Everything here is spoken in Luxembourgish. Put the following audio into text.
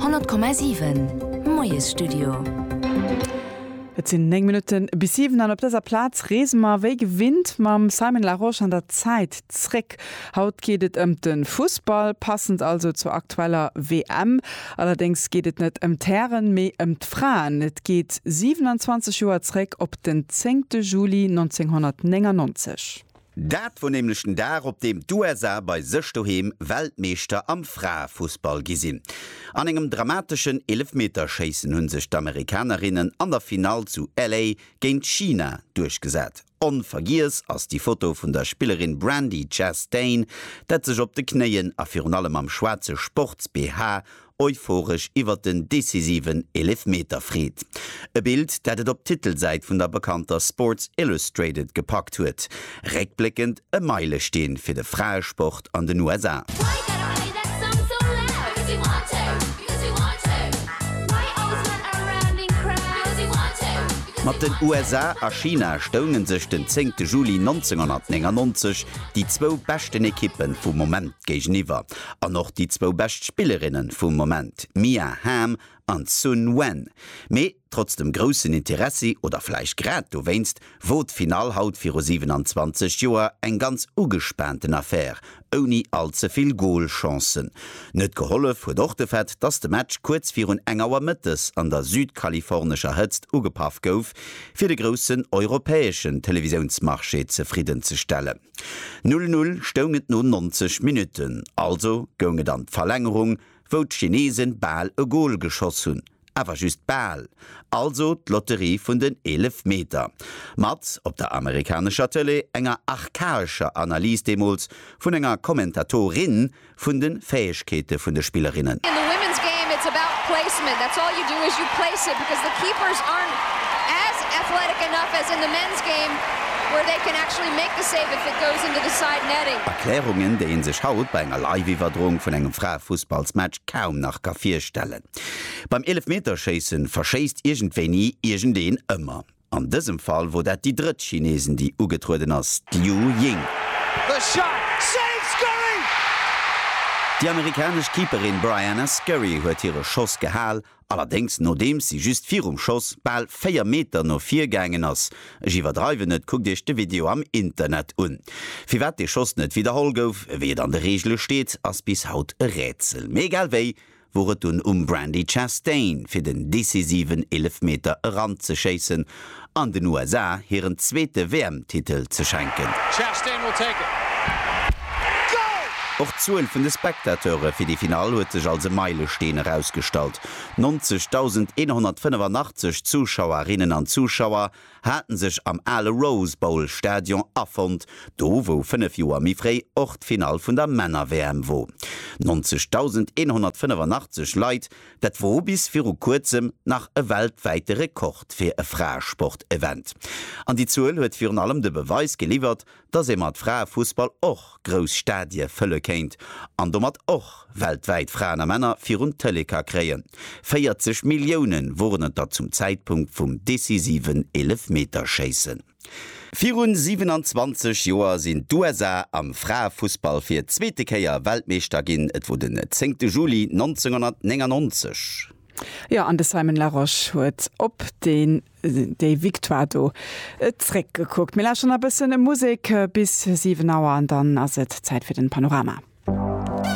100,7 Moiesstudio. Et sinn 9 Minutte bis 7 an op dëser Plaz reese mer wéi gewinnt mam Simon Larosche an der Zäit zréck. Haut geet et ëm de Fussball, passend also zur aktueller WM. Allerdéngs geet et net ëm d'Hären, mee ëm d'Fraen. Et geet 27 Joer zréck op den 10 Juli 1999. Dat wor nämlech den Dag op deem d'USA bei sech doheem Weltmeeschter am Fraefussball gi sinn. An engem dramateschen Eelefmeterschéissen hunn sech d'Amerikanerinnen an der Finall zu LA géint China duerchgesat. Onvergiess ass déi Foto vun der Spillerin Brandi Chastain, dat sech op de Knéien a virun allem am schwaarze Sports-BH euphoresch iwwert den decisiven Eelefmeter freet. E Bild, dat et op d'Titelsäit vun der bekannter Sports Illustrated gepackt huet. Réckbléckend e Meilesteen fir de Fraesport an den USA. Mat den USA a China stounge sech den 10 Juli 1999 déi zwou beschten Ekippe vum Moment géigeniwwer. An och déi zwou bescht Spillerinne vum Moment, Mia Hamm an Sun Wen. Mee trotz dem groussen Interessi, oder vläicht grad dowéinst, wor d'Finall haut viru 27 Joer eng ganz ugespaanten Affär, ouni all ze vill Goalchancen. Net gehollef huet och de Fait, dass de Match kuerz virun eng Auer mëttes an der südkalifornescher Hëtzt ugepaff gouf, fir de groussen europäeschen Televisiounsmarché zefridden ze stellen. Null Null stoung et no 90 Minutten, also goung et an d'Verlängerung, wou d'Chinesen bal e Gol geschoss hunn, awer just bal, also d'Lotterie vun den Eelefmeter. Mat op der amerikanescher Tëlee enger archaescher Analys deemools vun enger Kommentatorin, vun de Fäegkeete vun de Spillerinnen. In the women's game it's about placement, that's all you do is you place it because the keepers aren't as athletic enough as in the men's game where they can actually make the save if it goes into the side netting. Erklärungen, déi ee sech haut bei enger Live-Iwwerdroung vun engem Fraefussballsmatch kaum nach ka virstellen. Beim Eelefmeterschéissen verschéisst iergendwéini iergendeen ëmmer. An dësem Fall wor dat déi drëtt Chineesin déi ugetrueden ass, d'Liu Ying. Déi amerikanesch Keeperin Briana Scurry huet hire Schoss gehal, allerdéngs nodeems si just virum Schoss bal 4 Meter no vir gaangen ass. Ech iwwerdreiwen net, kuckt iech de Video am Internet un. Firwat dee Schoss net widderholl gouf, wéi et an de Reegele steet, ass bis haut e Rätsel. Mee egal wéi, wor et dunn um Brandi Chastain fir den decisiven Eelefmeter eranzeschéissen an den USA hiren zweete WM-Titel ze schenken. Och d'Zuel vun de Spectateure fir déi Finall huet sech als e Meilesteen erausgestallt, 90.185 Zuschauerinnen an Zuschauer haten sech am ale Rose Bowl Stadion afonnt, do wou 5 Joer méi fréi och d'Finall vun der Männer-WM wor. 90.185 Leit, dat wor bis viru kuerzem nach e weltwäite Rekord fir e Fraesport-Event. An déi Zuel huet virun allem de Beweis geliwwert, dass ee mat Fraefussball och grouss Stadie fëlle kéint an domat och weltwäit Fraen a Männer virun d'Tëlee ka kréien. 40 Millioune woren et der zum Zäitpunkt vum decisiven Eelefmeterschéissen. Virun 27 Joer sinn d'USA am Fraefussball fir zweete Kéier Weltmeeschter ginn, et wor den 10 Juli 1999. Jo, an de Simon Larosche huet op dee Déi Victoire do zréck gekuckt. Mir lauschteren nach e bëssen Musek bis 7 Auer an dann ass et Zäit fir den Panorama.